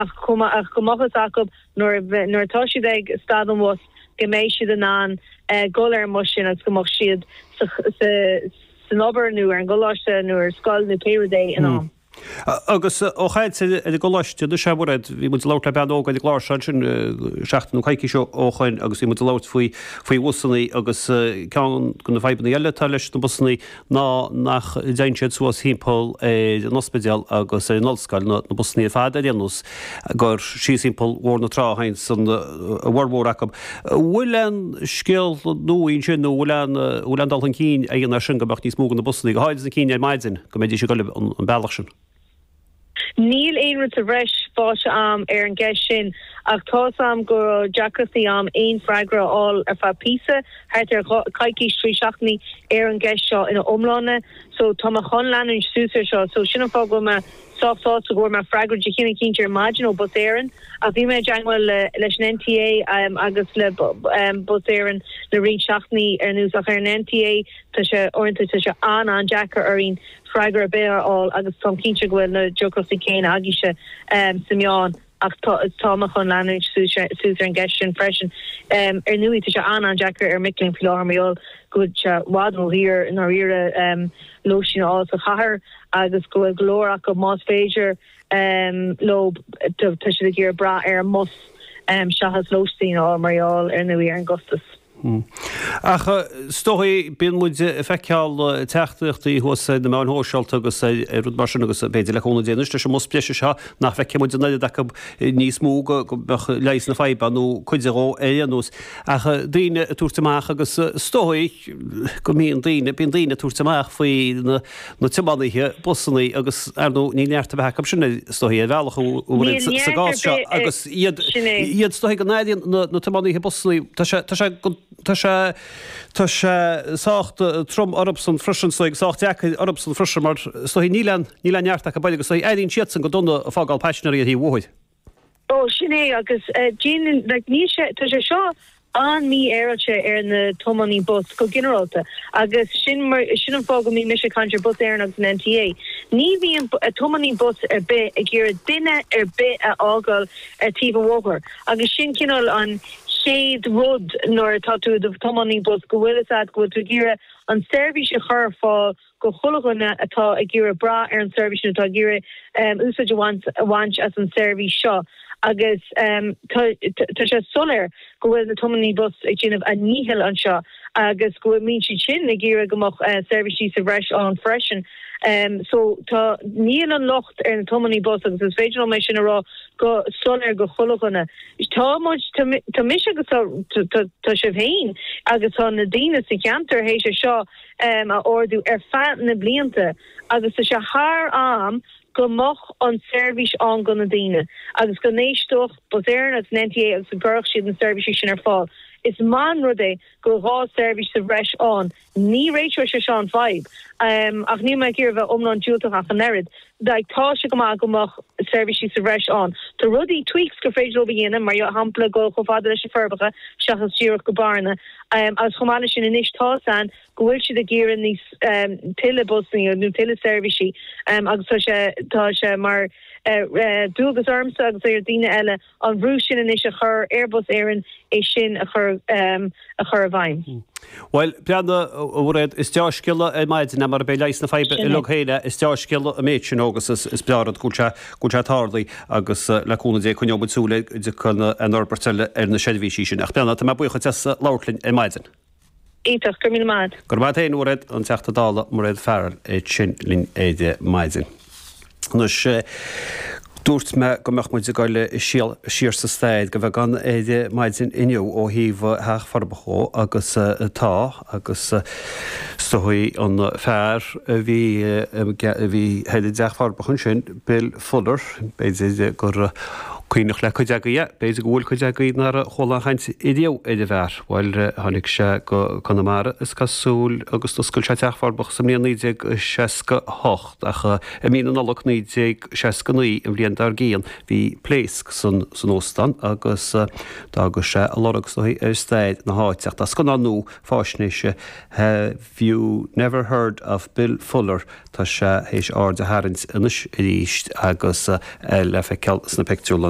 ach go mbeadh a fhios acu, nuair atá siad ag stad an bhus, go mbeidh siad in ann dul ar an mbus sin agus go mbeadh siad san obair nó ar an gcoláiste nó ar scoil nó pé rud é in am. Agus ó chaint ar an gcoláiste, anois, a Mhairéad, bhí muid ag labhairt le bean óg ar an gclár seo ansin seachtain nó coicís ó shoin agus bhí muid ag labhairt faoi bhusanna agus ceann de na fadhbanna eile atá leis na busanna ná nach dtéann siad suas thimpeall ar an ospidéal agus ar an ollscoil, na busannaí ar fad ar aon nós, gur síos thimpeall Bhóthar na Trá a théanns a bhformhór acu. An bhfuil aon scéal nua ansin, nó an bhfuil aon dul chun cinn á dhéanamh ar sin, go mbeadh níos mó de na busannaí, go háirid na cinn ar maidin, go mbeidís ag dul an bealach sin? Níl aon rud sa bhreis fáighte a'am ar an gceist sin ach tá's a'm go raibh deacrachtaí a'am aon freagra a fháil ar feadh píosa, thart ar dhá, coicís, trí seachtainí, ar an gceist seo ina iomláine. So tá mé chun leanúint suas ar seo. So sin an fáth go bhfuil mé sách sásta go bhfuair mé freagra de chineál cinnte ar maidin ó Bus Éireann ach bhí mé i dteangmháil le, leis an NTA agus le Bus Éireann le roinnt seachtainí anuas ach ar an NTA tá sé, uaireanta tá sé an-an-deacair orainn freagra ar bith a fháil agus táim cinnte go bhfuil na deacrachtaí céanna agaibhse sna meáin ach tá mé chun leanúint suas ar an gceist sin freisin. Ar ndóigh tá sé an-an-deacair ar mhic léinn faoi láthair mar gheall go bhfuil sé i bhfad ródhaor i ndáiríre lóistín a fháil sa gcathair agus go bhfuil go leor acu, más féidir leo, tá siad ag iarraidh brath ar an mbus seachas lóistín a fháil mar gheall ar ndóigh ar an gcostas. Hm. Ach is dóigh, bíonn muid ag feiceáil teachtaireachtaí thuas ar na meáin shóisialta agus ar rud mar sin agus b'fhéidir le cúnamh Dé anois leis an mbus breise seo nach bhfeicfidh muid an oiread acu níos mó, go mbeidh leigheas na faidhbe ann, nó cuid dhó ar aon nós. Ach daoine ag tabhairt amach agus is dóigh go mbíonn daoine, bíonn daoine ag tabhairt amach faoi na. na tiománaithe busannaí agus, ar ndóigh, níl neart ar bith acu sin, is dóigh, ar bhealach ar bith sa gcás seo agus iad, is dóigh, go n-airíonn na tiománaithe busannaí, tá sé, tá sé, tá sé, tá sé sách trom orthusan freisin, is dóigh, sách deacair orthusan freisin mar is dóigh, níl an, níl aon neart acu, b'fhéidir, is dóigh, airíonn siadsan go dona ag fágáil paisinéirí ar thaobh an bhóthair. Ó, sin é, agus déanann, like, níl sé, tá sé seo an-mhífhéaráilte ar na tiománaí bus go ginearálta, agus sin mar, sin an fáth go mbíonn mise ag caint ar Bus Éireann agus an NTA, ní bhíonn tiománaí bus ar bith ag iarraidh duine ar bith a fhágáil ar taobh an bhóthair, agus sin cineál an chéad rud nuair atá tú i do thiománaí bus, go bhfuil, is é, go bhfuil tú ag iarraidh an tseirbhís a chur ar fáil go chuile dhuine atá ag iarraidh brath ar an seirbhís nó atá ag iarraidh úsáid a bhaint as an tseirbhís seo agus tá sé soiléir go bhfuil na tiománaithe bus ag déanamh a ndíchill anseo agus go bhfuil muid siad sin ag iarraidh go mbeadh seirbhísí sa bhreis ann freisin so tá níl an locht ar na tiománaithe bus agus is féidir liom é sin a rá go soiléir go chuile dhuine tá muid tá mise agus tá tá sibh féin agus tá na daoine sa cheantar théis é seo a ardú ar feadh na blianta agus tá sé thar am go mbeadh an tseirbhís ann go na daoine agus go n-éisteodh Bus Éireann agus an NTA agus go gcuirfeadh siad na seirbhísí sin ar fáil. Is maith an rud é go bhfuil dhá seirbhís sa bhreis ann. Ní réiteoidh sé seo an fhadhb ach níl mé ag iarraidh a bheith iomlán diúltach ach an oiread. Bheadh tá sé go maith go mbeadh seirbhísí sa bhreis ann. Tá rudaí, tweaks, gur féidir leo a dhéanamh, mar shampla dul chomh fada leis na Forbacha seachas díreach go Bearna, agus chomh maith leis sin anois tá's a'inn go bhfuil siad ag iarraidh níos, tuilleadh busanna nó tuilleadh seirbhísí agus tá sé, tá sé mar dualgas ormsa agus ar dhaoine eile, an bhrú sin anois a chur ar Bhus Éireann é sin a chur i bhfeidhm. Bhuel, breathnaigh, a Mhairéad, is deá-scéala é ar maidin, marab é leigheas na faidhbe uilig féin é, is deá-scéala an méid sin, agus is breá an rud go bhfuil sé, go bhfuil sé tarlaithe, agus le cúnamh Dé, coinneoidh muid súil ar aon fhorbairt eile ar na seirbhísí sin. Ach, breathnaigh, tá mé buíoch duit as labhairt linn ar maidin. Iontach. Go raibh míle maith a'd. Go raibh maith a'd féin, a Mhairéad, an Teachta Dála Mairéad Farrell ansin linn ar maidin. Anois, dúirt mé go mbeadh muid ag dul siar sa stair go bheagán ar maidin inniu ó thaobh Theach Furbo dhó agus tá agus is dóichí an fear a bhí ag an dTeach Furbo ansin, Bill Fuller, b'fhéidir gur cuimhneach le cuid agaí é, b'fhéidir go bhfuil cuid agaí nár chuala aon chaint riamh ar an bhfear. Bhuel, tháinig sé go Conamara, is cosúil, agus d'oscail sé Teach Furbo sa mbliain 1968, ach i mí na Nollag 1969, an bhliain dár gcionn, bhí pléasc san óstán agus d'fhága sé a lorg is dóichí ar stair na háite. Ach tá scannán nua fáisnéise Have You Never Heard of Bill Fuller? Tá sé théis aird a tharraingt anois arís agus é le feiceáil sna pictiúrlann.